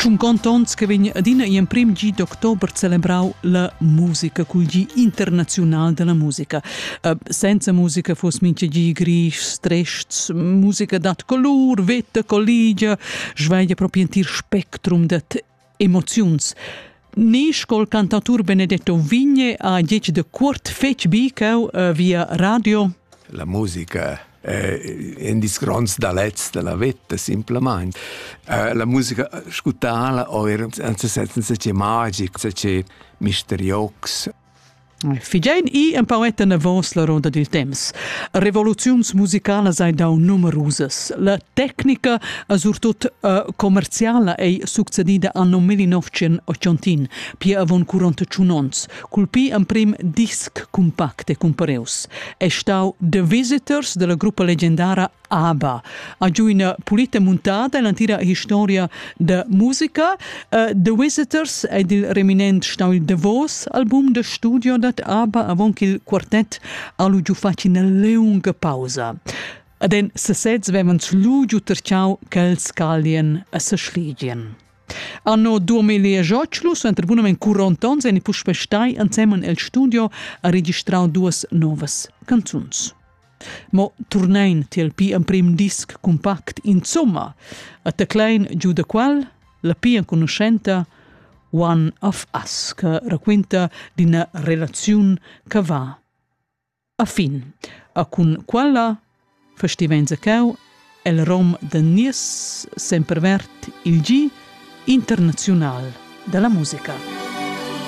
Tschun contonts che vegn adina gl'emprim gi d'october celebrau la musica cul gi internaziunal dalla musica. Uh, senza musica fuss mincha gi grischs, trests, musica dat colur, vetta colligia, svegia propi entir spectrum dad emoziuns. Ni scol cantatur Benedetto Vigne ha dieci de cuort fetg bicau uh, via radio. La musica è in des grands dalets della vita, simplemente. Uh, la musica scutala o er, anzi, senza che magic, senza che misteriox. Figein i empauet anavos la roda dil temps. Revoluziuns musicalas ei dau numerusas. La tecnica e surtut uh, commerciala ei succedida anno 1980, pia avon 41 onns, cul pi emprim disc compact e cumpareus. È stau The Visitors della gruppa leggendara Aber ha giu ina pulita muntada l'antira historia da musica. Uh, The Visitors è il reminent stau il davos album da studio dat Aber avon il quartet ha lu giu fatg ina leunga pausa. Ad en sesez vevans lu giu terciau quels calien a seschlidien. Anno 2018 su entrepunament curontons en i puspestai ansemen el studio a registrau duas novas canzuns. Mo turnein tiel pi emprim disc compact insomma, a teclein giu da qual la pia enconuschenta One of Us che raquinta d'ina relaziun che va a fin. A cun quella festivein zacau el rom da nies sempervert il gi internaziunal dalla musica.